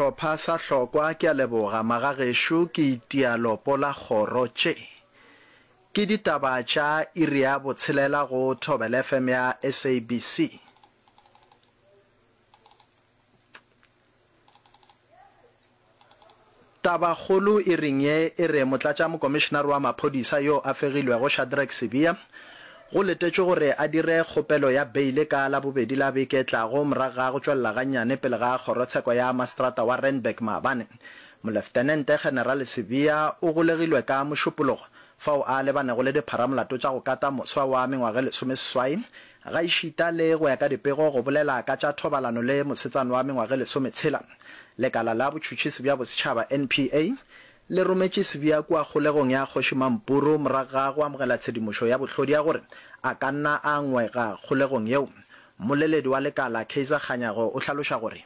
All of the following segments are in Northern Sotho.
Shlopha sa hlokwa ke a leboga magagešo ke itia lopo la kgoro tše ke ditaba tša iri ya botshelela go thobel FM ya SABC Tabakgolo e reng ye e re motlatšamokomišenare wa maphodisa yo a fegilwego Shadrack Sibiya go letetšwe gore a dire kgopelo ya beile ka Labobedi la beke e tlago morago ga go tšwelela gannyane pele ga kgorotsheko ya maseterata wa Randburg maabane. Moleftenente Generale Sibiya o golegilwe ka Mošupologo fao a lebanego le dipharamolato tša go kata moswa wa mengwaga e lesomeseswai Gaešita le go ya ka dipego go bolela ka tša thobalano le mosetsana wa mengwaga e lesometshela, lekala la botšhutšhisi bja bosetšhaba, NPA, le rometše sebja kua kgolegong ya Kgoši Mampuru morago ga go amogela tshedimošo ya bohlodi ya gore a ka nna a ngwega kgolegong yeo. Mmoleledi wa lekala, Kaizer Kganyago, o hlaloša gore.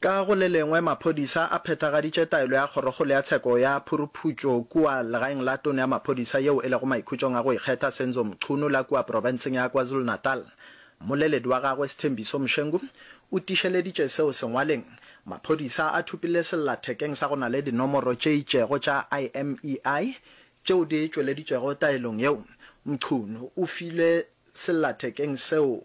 Ka go le lengwe, maphodisa a phethagaditše taelo ya Kgorokgolo ya Tsheko ya Phuruphutšo kua legaeng la Tona ya Maphodisa yeo e lego maikhutšong a go ikgetha Senzo Mchunu la kua profenseng ya KwaZulu-Natal. Mmoleledi wa gagwe Sthembiso Mshengu o tiišeleditše seo sengwaleng, Maphodisa a thopile sellathekeng sa go na le dinomoro tše itšego tša IMEI tšeo di tšweleditšwego taelong yeo. Mchunu o filwe sellathekeng seo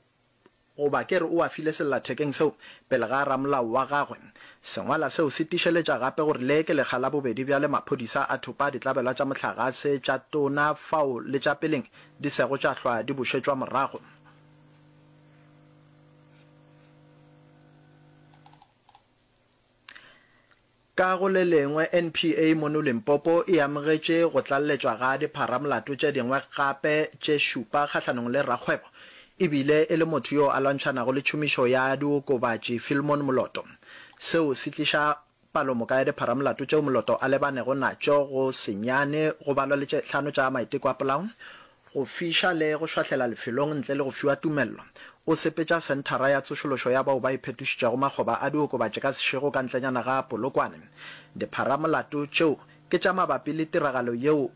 Goba ke re o a file sellathekeng seo pele ga ramolao wa gagwe. Sengwala seo se tišeletša gape gore le ke lekga la bobedi bjale maphodisa a thopa ditlabelwa tša mohlagase tša tona fao le tša peleng di sego tša hlwa di bušetšwa morago. Ka go le lengwe, NPA mono Limpopo e amogetše go tlalletšwa ga dipharamolato tše dingwe gape tše šupa kgahlanong le rakgwebo e bile e le motho yo a lwantšhanago le tšhomišo ya diokobatši Philmon Moloto. Seo se tliša palomoka ya dipharamolato tšeo Moloto a lebanego natšo go senyane go balwa le tše hlano tša maiteko a polao go fiša le go šwahlela lefelong ntle le go fiwa tumello, o sepetša Senthara ya Tsošološo ya Bao ba Iphetošitšego makgoba a diokobatši ka sešego ka ntlenyana ga Polokwane. Dipharamolato tšeo ke tša mabapi le tiragalo yeo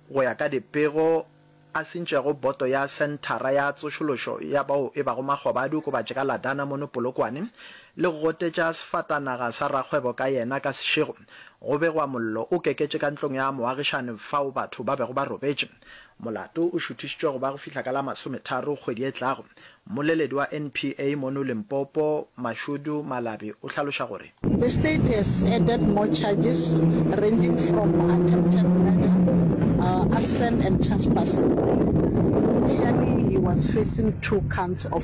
go ya ka dipego a sentšego boto ya Senthara ya Tsošološo ya Bao e Bago Makgoba a Diokobatši ka Ladana mono Polokwane le go gotetša sefatanaga sa rakgwebo ka yena ka sešego Go begwa mollo o keketše ka ntlong ya moagišani fao batho ba bego ba robetše. Molato o šuthišitšwe go ba go fihla ka la masometharo kgwedi e tlago. Mmoleledi wa NPA mono Limpopo, Mashudu Malabi o hlaloša gore. The state has added more charges ranging from attempted murder, arson and trespassing. Initially he was facing two counts of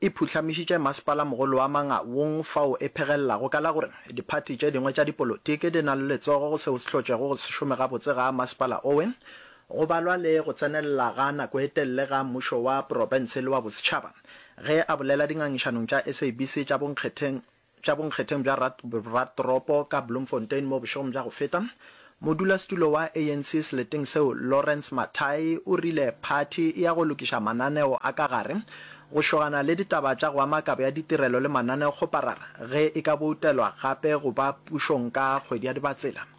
e phuhlamišitše masepala-mogolo wa Mangaung fao e phegelelago ka la gore diphathi tše dingwe tša dipolotiki di na le letsogo go seo se hlotšego go se šome gabotse ga masepala owe, go balwa le go tsenelela ga nako e telele ga mmušo wa porofense le wa bosetšhaba. Ge a bolela dingangišanong tša SABC tša bonkgetheng, tša bonkgetheng bja Ratropo ka Bloemfontein mo bošegong bja go feta, modulasetulo wa ANC seleteng seo Lawrence Mathayi o rile phathi e ya go lokiša mananeo a ka gare go šogana le ditaba tša go ama kabo ya ditirelo le mananeo kgoparara ge e ka boutelwa gape go ba pušong ka kgwedi ya Dibatsela.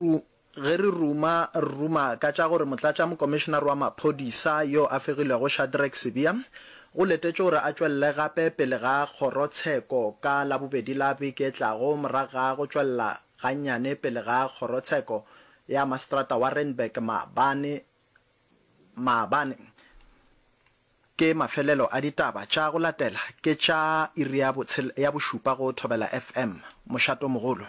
U, Ge re ruma, re ruma ka tša gore motlatšamokomišenare wa maphodisa yo a fegilwego Shadrack Sibiya o letetšwe gore a tšwelele gape pele ga kgorotsheko ka Labobedi la beke e tlago morago ga go tšwelela gannyane pele ga kgorotsheko ya maseterata wa Randburg maabane maabane. Ke mafelelo a ditaba tša go latela ke tša iri ya bošupa go Thobela FM. Mošatomogolo.